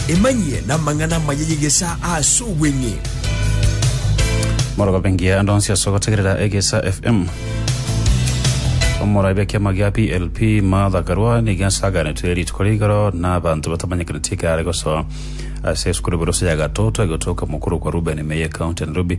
Emanyie namang'ana amaya y'egesa ase obweng'e. Morogobe ngiya ande onsi ase ogotegerera Egesa FM. Omorabi ekiama gia PLP Martha Karua nigo asaganetwe rituko ria igoro na abanto batamanyekaneti ekero are gosoa ase esukuru Burusa ya Gatoto egotoka mokuru kwa Ruben Meye county ya Nairobi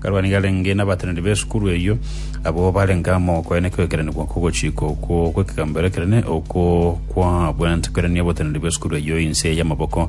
Karwani garenge nabateneneri b'esukuru eyio, abwo barenge amo koene kw'ekeranio gwa kogochika okwo gw'ekegamberero ekenene, okwo kwabwante kwerania oboteneneri bw'esukuru eyio inse y'amaboko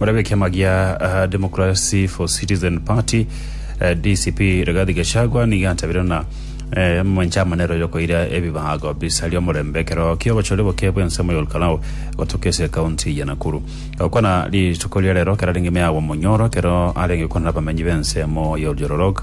Morabe ekiama gia Democracy for Citizen Party, DCP, Rigathi Gachagua nigo antabire ng'a omomanche aa nere oyokoira ebibago bisaria omorembe ekero ki'obochori boke bw'ensemo ya Olkalau gotoka ase ekaunti ya Nakuru. Gokwana rituko ria rero kerarenge ime agwo omonyoro ekero arenge gokwana nabamenyi b'ensemo ya Oljororok,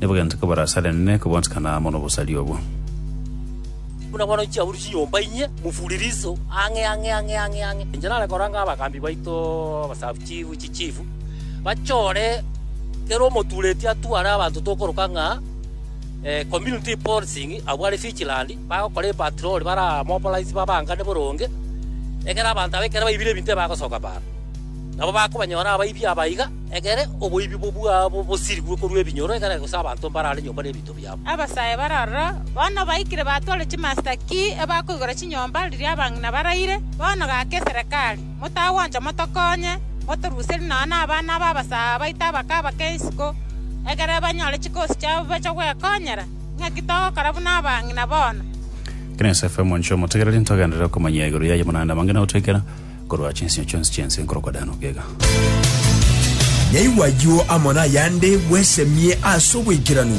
nigo gento kebaraasanene kobwanchekana amo nobosaria obwo. Buna bono chiabuuru chinyomba inye, mofuririso ang'e ang'e ang'e ang'e ang'e. Inche nare koranga abagambi baito abasabuchifu, chichifu, bachore kera omotureti atware abanto tokoroka ng'a community policing abwo are vigilant, bagokora epatroli baramobilize babangane boronge, ekero abanto aba ekero baibire ebinto ebagosoka baano. Nabo bakobanyora abaibi aba iga. Ekere oboibi bwabo bosirigwe korwa ebinyoro, ekere gose abanto mbarare nyomba nebinto biabo. Abasae bare aroro, bono baikire batware chimasita ki ebakoigora chinyomba riria abang'ina baraire. Bono gaka eserekari, motagwancha motokonye, motoruserie nonya nabana b'abasae abaito abake abake isiko, ekere banyore chikosi chiabo bache gwekonyera. Ng'aki togokora buna abang'ina bono? Genesis FM Inchuo motegereri ntogenderere komanyia igoro yaye buna naende amang'ina gotoikera. Korwa chinsio chionsi chi'ense nkorokwa Danubi iga. Nyaigwa ayio amo nayande, bwesemie ase obwaikeranu.